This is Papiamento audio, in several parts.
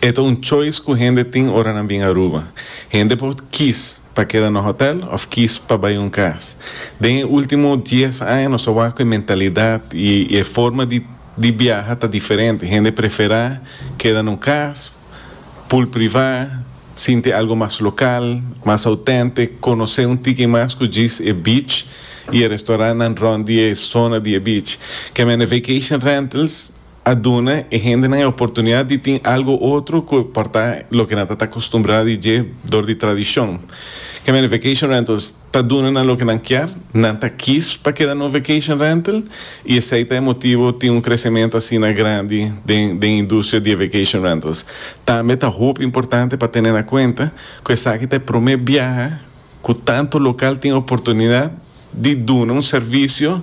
E ta un choice ku hende tin ora nan bin Aruba. Hende por kis pa keda na hotèl òf kis pa bai un kas. Den e último dies aña nos a wak ku e mentalidat i e forma di di biaha ta diferente. Hende preferá keda na un kas pul privá, sinti algu mas lokal, mas autèntik, konosé un tiki mas ku djis e beach i e restorantnan rònt di e sona di e beach. Caminda Vacation Rentals. a duna e hendenan e oportunidat di tin algu otro ku por ta loke nan ta ta akustumbrá di dje dor di tradishon. Kèmen e vacation rentals ta duna nan loke nan kier, nan ta kis pa keda na un vacation rental i esei ta e motibu tin un kresementu asina grandi den den e industria di e vacation rentals. Tambe ta hopi importante pa tene na kuenta ku esaki ta e promé biaha, Ku tantu lokal tin oportunidat di duna un servisio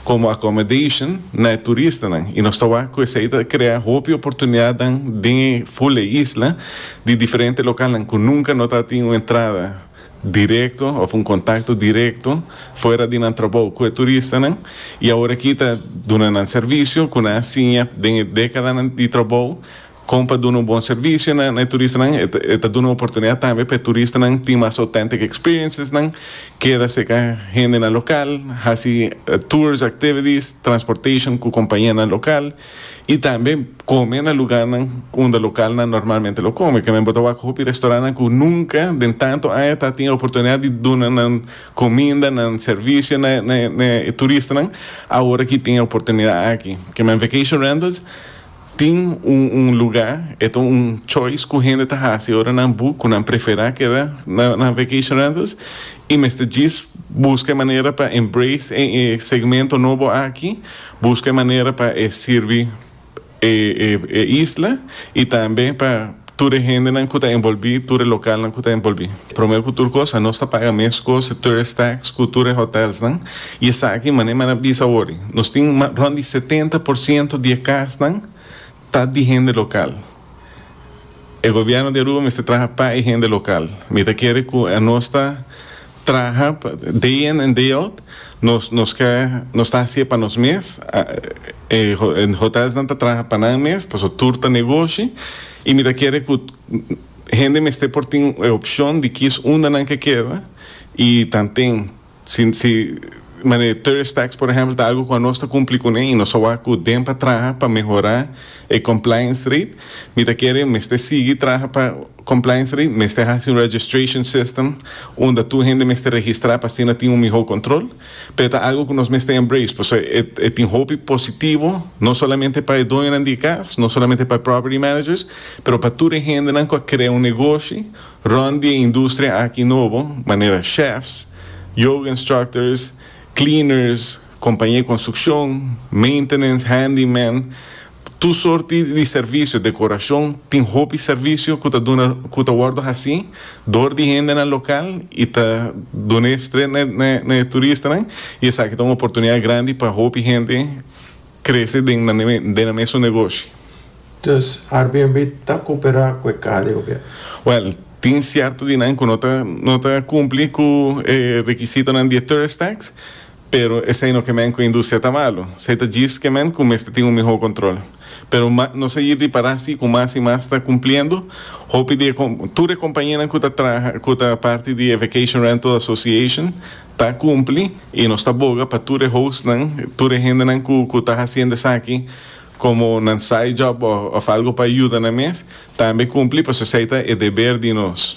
komo accommodation na e turistanan i nos ta wak ku esei ta krea hopi oportunidatnan den e ful e isla di diferente lokalnan ku nunka no ta tin un entrada direkto òf un kontakto direkto fuera di nan trabou ku e turistanan i awor aki ta duna nan servisio ku nan a siña den e dekadanan di trabou Kon pa duna un bon servisio na e turistanan? E ta duna oportunidat tambe pa e turistanan tin mas authentic experiencesnan, keda cerca hendenan local, haci tours, activities, transportation cu compañianan local y tambe come na lugarnan unda localnan normalmente lo come. Kende bo ta wak hopi restaurantnan cu nunca den tanto aña ta tin e oportunidad di duna nan cominda, nan servicio na e turistanan, awor aki tin e oportunidad aki. Kende en Vacation Rentals. Tin un un lugá, e ta un choice ku hende ta hasi ora nan bu ku nan preferá keda na nan vacation rentals i mester djis buska e manera pa embrace e e segmento nobo aki, buska e manera pa e sirbi e e e isla i tambe pa. Tur e hendenan ku ta envolbí, tur e lokalnan ku ta envolbí. Promé ku tur kos, a nos ta paga meskos e tourist tax ku tur e hotèlsnan, i esaki, manera mi a na bisa awor, nos tin rònt di setenta por siento di e kasnan ta di hende lokal. E gobièrnu di Aruba mester traha pa e hende lokal. Mi ta kere ku a nos ta Traha day in and day out, nos nos ke nos ta haci'e pa nos mes, e hotelsnan ta traha pa nan mes, paso tur ta negoshi y mi ta kere cu hende mester por tin e opcion di kis unda nan ke keda y tanten si si mane tourist tax por ehempel ta algo cu anos ta cumpli cu ne y nos a wak cu den pa traha pa mehora e compliance rate, mi ta kere mester sigui traha pa. Compliance ri mester haci un registration system unda tur hende mester registra pa asina tin un miho control. Pero e ta algo cu nos mester embrace pasobra e e tin hopi positivo no solamente pa e doñonan di e cas, no solamente pa e property managers, pero pa tur e hendenan cu a crea un negoshi rond di e industria aki nobo, manera chefs, yoga instructors, cleaners, compañia di construccion, maintenance, handyman, Tur sorti di servisio, dekorashon, tin hopi servisio ku ta duna ku ta wòrdu hasí dor di hendenan lokal i ta duna e strent na e na e turistanan i esaki ta un oportunidat grandi pa hopi hende krese den na den na mes su negoshi. Dùs Airbnb ta koperá ku e kada di gobièrnu? Wèl, tin sierto di nan ku no ta no ta kumpli ku e rekisitonan di e Tourist Tax, Pero esei no kemen ku industria ta malu, esei ta djis kemen ku mester tin un mihó kontrol. Pero ma nos a yir di pará si ku mas i mas ta kumpliendo. Hopi di e kom, tur e kompañianan ku ta traha, ku ta parti di e Vacation Rental Association ta kumpli i nos ta boga pa tur e hostnan, tur e hendenan ku ku ta hasiendo esaki komo nan side job òf algu pa yuda nan mes, tambe kumpli pasobra esei ta e deber di nos.